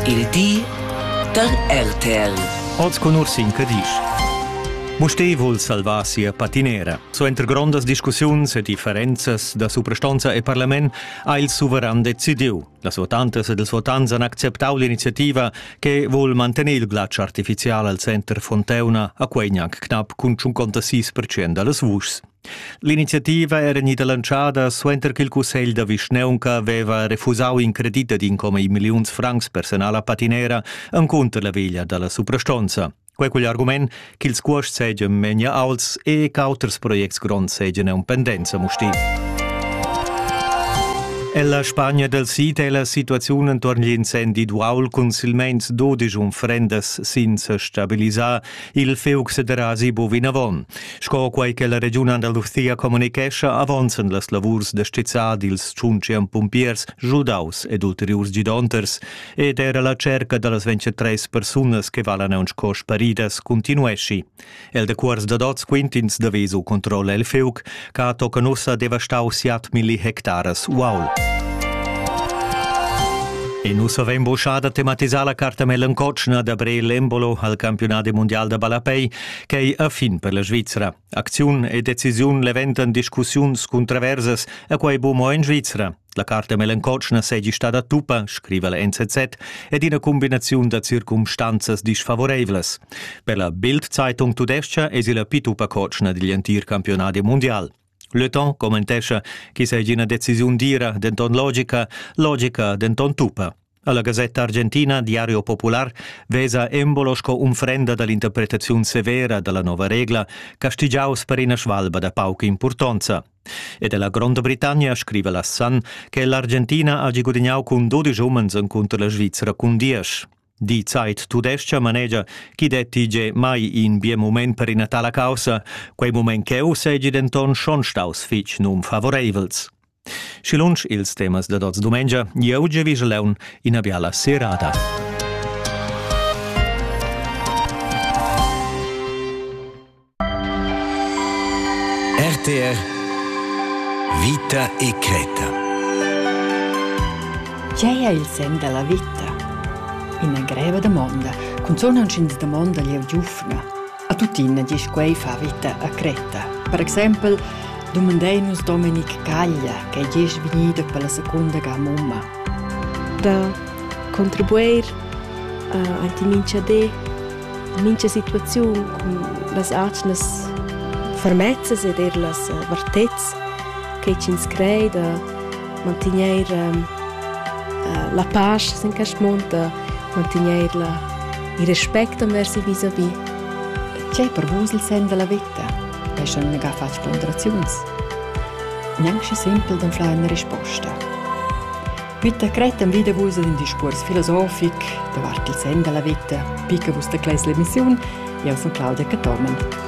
Il di da RTL. Oz cun Ursin Cadisch. Mustér vul salvar sia patinera. Suenter grondas discussiuns e differenzas da suprastonza e parlament ha il suveran decidiu. Las votantas ed ils votants han acceptau l'iniziativa che vul mantener il glatsch artificial al center Fonteuna, a quei gnanc knapp cun 56% dallas vuschs. L'iniziativa era gnida lantschada suenter ch'il cussegl da vischnaunca aveva refusau in credit ad incomi milliuns francs personal a patinera encunter la veglia dalla suprastonza. Quei cugl argument ch'ils cuosts seigien memia aults e ch'auters projects gronds seigien en pendenza mustil. Ella Spagna del Sid è la situaziun entorn l'incendi d'uaul cun silmeins 12 unfrendas senza stabilisar Il fiug sederà sibo vinavon, sco quei che la regiun Andalusia communicescha avonzen las lavurs da stizzar dils tschuntschem pumpiers giudaus ed ulteriurs gidonters ed era la cerca dallas 23 persunas che valan aunc sco sparidas continuesci. El de cuors da dots quintins da vesu controlla il fiug, ca tocan ussa devastau siat milli hectares uaul. E nu savein boschada tematisar la carta melancotschna da Bre Lembolo al campionat mondial da ballapei, che ei a fin per la Svizzera. Acziun e decisiun leventan discussiuns cuntraversas a quei bu mo in Svizzera. La carta melancotschna seigi stada tuppa, scriva la NZZ, ed ina cumbinaziun da circumstanzas disfavoreivlas. Per la Bild-Zeitung tudescha esi la pituppa cotschna digl entir campionadi mundial. Le Temps commentescha che seigi ina decisiun dira, denton logica, logica, denton tuppa. Alla Gazzetta Argentina Diario Popular vesa embolo sco unfrenda dall'interpretaziun severa dalla nova regla castigiaus per ina svalba da pauca impurtonza. Ed ella Gronda Britannia scriva la Sun che l'Argentina hagi gudignau cun 12 umens encunter la Svizzera cun diesch. Die Zeit tudescha manegia chi detti ge mai in bien moment per ina tala causa, quei moment cheu segi denton schon staus fitg nunfavoreivels. Schi lunsch ils temas dad oz dumengia, jeu gievigel leun ina biala serada. RTR Vita e creta. Tgei è il sen della vita? Ina greva domanda, cunzun aunc ins domonda glieud giufna. A tuttina diesch quei fa vita a Creta. Per exempel dumandein nus Dominic Caglia che ei vegnida per la secunda ga mumma. Da contribuir uh, a ti mincha di mincha situaziun cun las atgnas fermezzas ed er las eh, vartezz che ins crei da mantegner um, la pace sin quest mund, da mantegner la Il respect enverso vis-à-vis. Tgei per vus il senn della vita? Ei schon ga fatg ponderaziuns? Neanche simpel d'anflar una risposta. Bitte cretem wieder vus ad un discurs filosofic davart il senn della vita, picca vus da clesla emissiun, io sono Claudia Catormen.